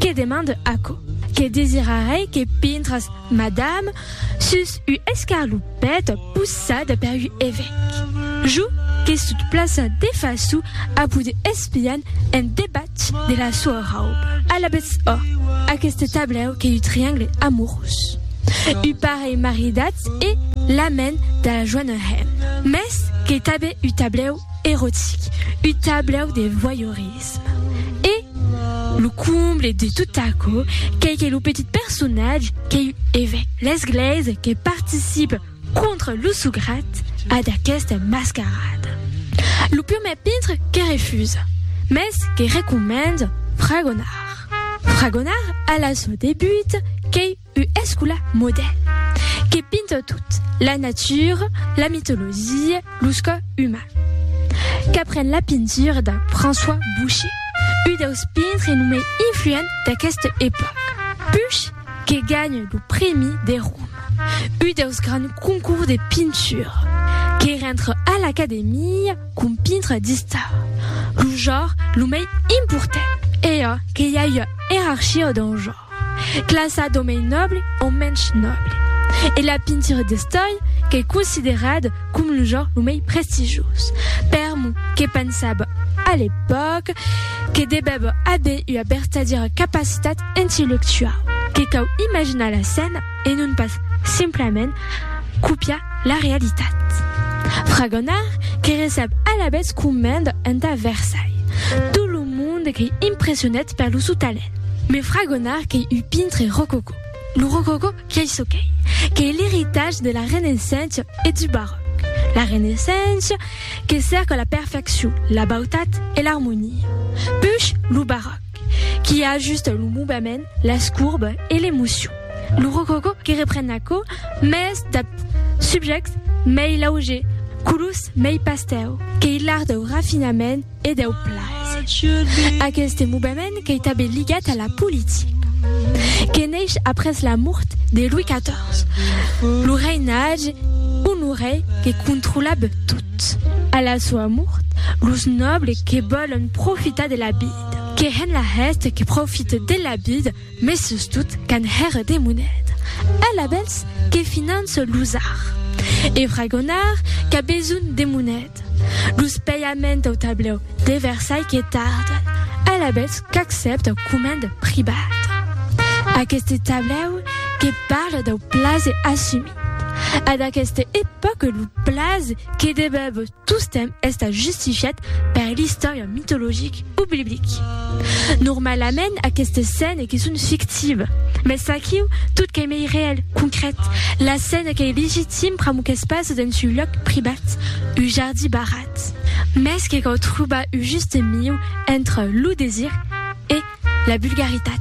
Que demande aquò? Que desirarai que pintras, madame, sus u escarlupèt possada per u evèc. Jo que sut plaça de façu a poder espian en debatz de la soa rauba. Alabètz ò, aqueste tablèu qu'ei u triangle amorós. U parelh maridatz e l'amèn de la joanarem. Mès qu'ei tanben u tablèu erotic, u tablèu de voyeurisme. L'entusiasme e lo comble de tot aquò qu'ei que lo petit personatge qu'ei un evèc l'esglèisa que participe contra lo sograt a d'aquesta mascarada. Lo prumèr pintre que refusa, mès que recomenda fragonar. Fragonar a la sua debut qu'ei U escula modè que pinta tot, la natura, la mitologia, lo sco uman. Qu'apren la pintura de François Boucher, u deus pintre lo mei influent d'aqueste epòc. Puch que ganha lo prèmi de Roma, u deus grands concours de pintura, que rentre a l'Academia com pintre d'istar, lo jor lo mei important. Ea que i a ua erarchia dau jor. Classa d'o mei nòble o mensh nòble. E la pintura d'estòi qu'ei considerada com lo genre lo mei prestigioz. Per mo, que pensava a l'epòca que devèva aver ua vertadièra capacitat intellectuau, que cau imaginar la scèna e non pas simplament copiar la realitat. Fragonard que recep alavetz comenda entà Versailles tot lo monde qu'ei impressionat per lo sou talent. Me fragonar qu'ei un pintre rococò. Lo rococò qu'ei çò qu'ei, qu'ei l'eritatge de la Renaissença e du Barròc. La Renaissença que cèrca la perfeccion, la bautat e l'armonia. Puish lo Barròc qui ajusta lo movement, las courbes e l'emocion. Lo rococò que repren aquò mès dab subjèctes mei lauger, colors mei pastèu, qu'ei l'art dau rafinament, e deu plaser. Aqueste movement qu'ei tanben ligat a la politica, que neish après la mort de Louis XIV, lo reinatge Honoré que controlab tot. A la soa mort, los nobles que vòlon profitar de la vida, que hèn la hèste que profite de la vida, Mes sustot qu'an hèr de moneda. Ell abels que finance los ar. E fragonar qu'a besonh de moneda. Los peiaments au tablèu de Versailh que tarden. Ell abels qu'accepta comend pribat. Aqueste tablèu que parle dau plaze assumit. A d'aqueste epòque lo plaze que debèb. Tostemp estant justifiat per l'istòria mitologic o biblic. Normalament aquestes scènes que son fictives, mès aquiu tot qu'ei mei reèl, concrèt, la scène qu'ei legitim pr'amor qu'es pas dens un lòc privat, un jardí barrat. Mès que cau trobar un juste miu entre lo desir e. La bulgaritat.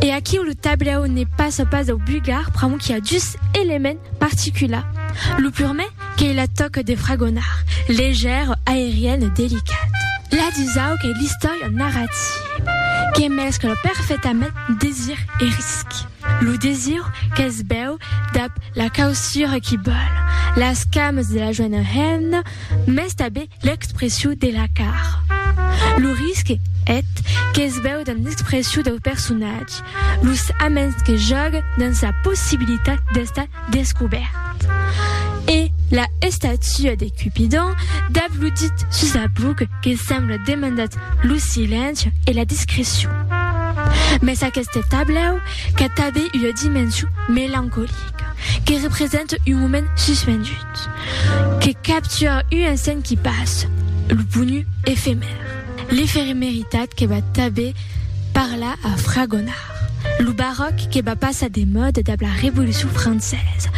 E aquiu lo tablèu ne pas a pas dau bulgar pr'amor qu'i a dus elements particulars. Lo purmè qu'ei la tòca de fragonar, legèra, aeriana, delicata. La dusau qu'ei l'istòria narrativa, que mescla perfectament desir e risc. Lo desir qu'es bèu dab la causura qu'i bòl, las camas de la joena hemna, mès tanben L'expressiu de la car. Lo risque et qu'es veu dans l'expressiu dau personatge, los aments que jògue dans sa possibilitat d'estar descobèrt. E la estatua de Cupidon dab lo dit sus sa buc que sembla demandat lo silenci e la discrecion. Mès aqueste tablèu qu'a tabé ua dimension melancolica, que represente un moment suspendut. Que capture un insent qui passe, lo ponu efemèr, l'efemeritat que va tanben parlar a Fragonard, lo baròc que va passar de mòda dab la Revolucion Francesa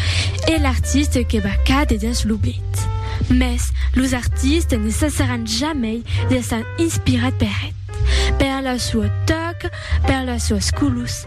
e l'artiste que va càder dens l'oblit. Mès los artistes ne cessaràn jamei d'èsser inspirats per eth, per la sua tòca, per las suas colors,